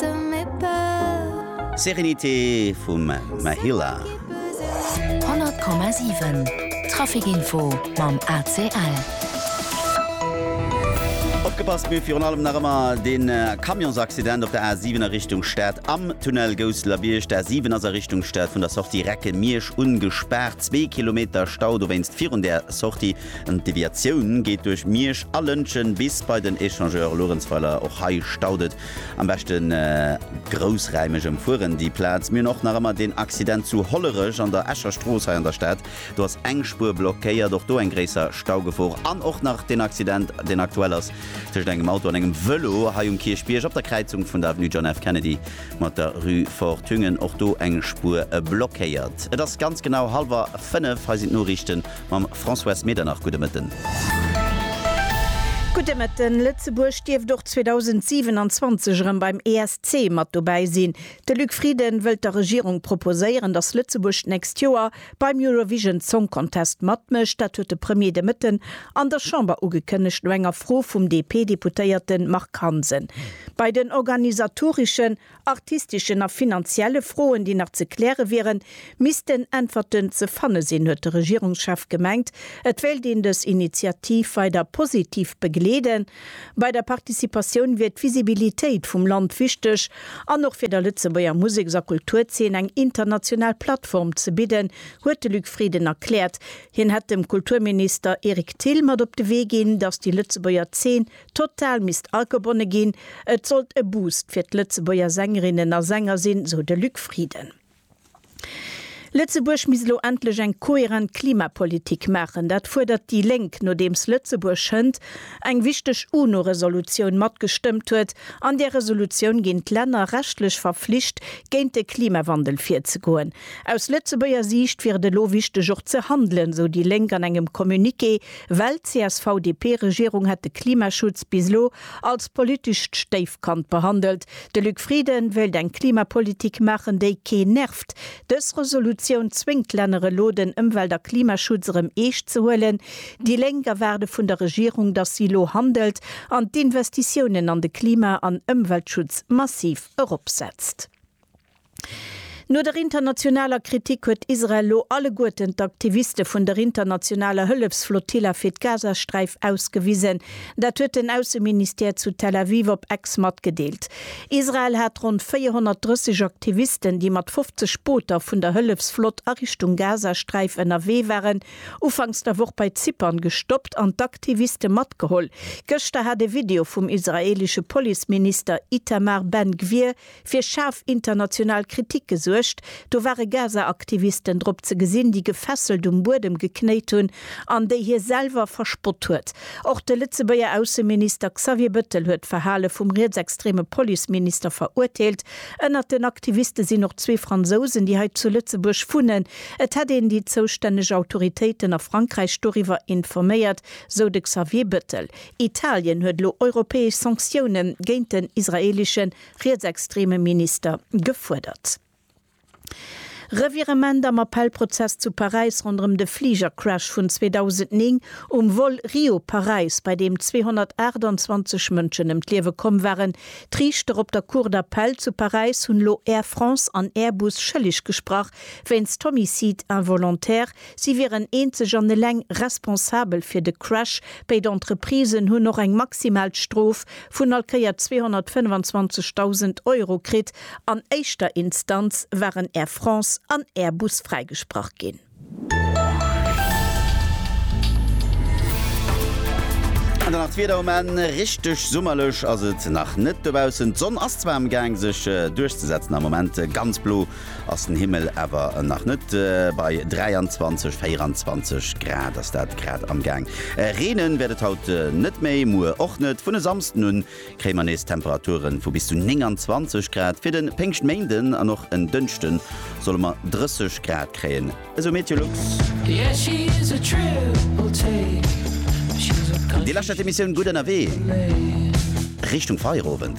Reste me peur. Sérénité vum Mahila. 100,7 Traficinfo mam ACL. Opgepasst, mee virun allem nach ëmmer de Camionsaccident op der A7 a Richtung Stad am Tunnel Gousseler-Bierg. D'A7 ass a Richtung Stad vun der Sortie Recke-Miersch ungespaart. Zwee Kilometer Stau dowéinst virun där Sortie. D'Deviatioun geet duerch Miersch a Lëntgen bis bei den Échangeur Luerenzweiler. Och hei staut et Am beschten groussräimeg emfueren déi Plaz. Mir hunn och nach ëmmer deen Accident zu Hollerech an der Escher Strooss hei an der Stad. Do ass eng Spuer blockéiert. Och do eng gréisser Staugefor. An och nach deen Accident, deen aktuell ass tëschent engem Auto an engem Vëlo hei um Kierchbierg op der Kräizung vun der Avenue John F. Kennedy mat der Rue Fort Thüngen. Och do eng Spuer blockéiert. Et ass ganz genau hallwer fënnef. Hei sinn d'Noriichten. Mam Françoise Medernach, gudde Mëtten. Gudde Mëtten. Lëtzebuerg dierft och 2027 erëm beim ESC mat dobäi sinn. De Luc Frieden wëllt der Regierung proposéieren, datt Lëtzebuerg d'nächst Joer beim Eurovision Song Contest matmécht. Dat huet de Premier de Mëtten an der Chamber ugekënnegt, no enger Fro vum DP-Deputéierte Marc Hansen. Bei den organisatoreschen artistischen a finanzielle Froen, déi nach ze kläre wieren, missten Äntwerten ze fanne sinn, huet de Regierungschef gemengt. Et wéilt een dës Initiativ weider positiv begleeden. Bei der Participatioun wier d'Visibilitéit vum Land wichteg an och fir der Lëtzebuerger Museks a Kulturzeen eng international Plattform ze bidden, huet de Luc Frieden erkläert. Hien hätt dem Kulturminister Eric Thill mat op de Wee ginn, datt déi Lëtzebuerger Zeen Total misst agebonne ginn. Et sollt e Boost fir d'Lëtzebuerger Sängerinnen a Sänger sinn, sou de Luc Frieden. Lëtzebuerg misst elo endlech eng kohärent Klimapolitik maachen. Dat fuerdert déi Lénk, nodeems Lëtzebuerg schënd eng wichteg UNO-Resolutioun matgestëmmt huet. An där Resolutioun ginn d'Länner rechtlech verflicht, géint de Klimawandel virzegoen. Aus Lëtzebuerger Siicht wier et elo wichteg och ze handelen, sou déi Lénk an engem Communiqué. Well d'CSV-DP-Regierung hätt de Klimaschutz bis elo als politescht Stéifkand behandelt. De Luc Frieden wéilt eng Klimapolitik maachen, déi keen nervt. Dës Resolutioun zwéngt d'Länner elo, den Ëmwelt a Klimaschutz erëm eescht ze huelen. Déi Lénk erwaarde vun der Regierung, datt si elo handelt an d'Investitiounen an de Klima an Ëmweltschutz massiv eropsetzt. No der internationaler Kritik huet Israel elo alleguerten d'Aktiviste vun der internationaler Hëllefsflotilla fir d'Gazasträif ausgewisen. Dat huet den Ausseministère zu Tel Aviv op Ex matgedeelt. Israel hat ronn 430 Aktivisten, déi mat 50 Booter vun der Hëllefsflott a Richtung Gazasträif ënnerwee waren, ufanks der Woch bei Zypern gestoppt an d'Aktiviste matgeholl. Gëschter hat e Video vum israeelesche Policeminister Itamar Ben-Gvir fir schaarf international Kritik gesuergt, do ware Gaza-Aktivisten drop ze gesinn, déi gefesselt um Buedem geknéit hunn an déi hie selwer verspott huet. Och de Lëtzebuerger Ausseminister Xavier Bëttel huet d'Verhale vum rietsextreme Policeminister verurteelt. Ënnert den Aktiviste sinn och zwee Fransousen, déi hei zu Lëtzebuerg wunnen. Et hätt een déi zoustänneg Autoritéiten a Frankräich doriwwer informéiert, sou de Xavier Bëttel. Italien huet elo europäesch Sanktioune géint den israeeleschen rietsextreme Minister gefuerdert. Revirement am Appellprozess zu Paräis ronderëm de Fligercrash vun 2009 um Vol Rio-Paräis, bei deem 228 Mënschen ëm d'Liewe komm waren. D'Riichter op der Cour d'Appel zu Paräis hunn elo Air France an Airbus schëlleg gesprach wéinst Homicide involontaire. Si wieren eenzeg an eleng responsabel fir de Crash. Béid Entreprisen hunn och eng maximal Strof vun all Kéier 225.000 Euro kritt. An éischter Instanz waren Air France an Airbus fräigesprach ginn. An dann nach d'Wieder um Enn, Richteg summerlech ass et nach net dobaussen. D'Sonn ass zwar am Gaang sech duerchzesetzen, am Moment ganz blo. ass den Himmel awer nach net bei 23, 24 Grad ass dat grad am Gaang. Reenen wäert et haut net méi, muer och net. Vun e Samsden un kréie mer nees Temperaturen vu bis zu 29 Grad. Fir den Péngschtméinden an och en Dënschden solle mer 30 Grad kréien, esou MeteoLux. Dir lauschtert d'Emissioun Gutt Ënnerwee Richtung Feierowend.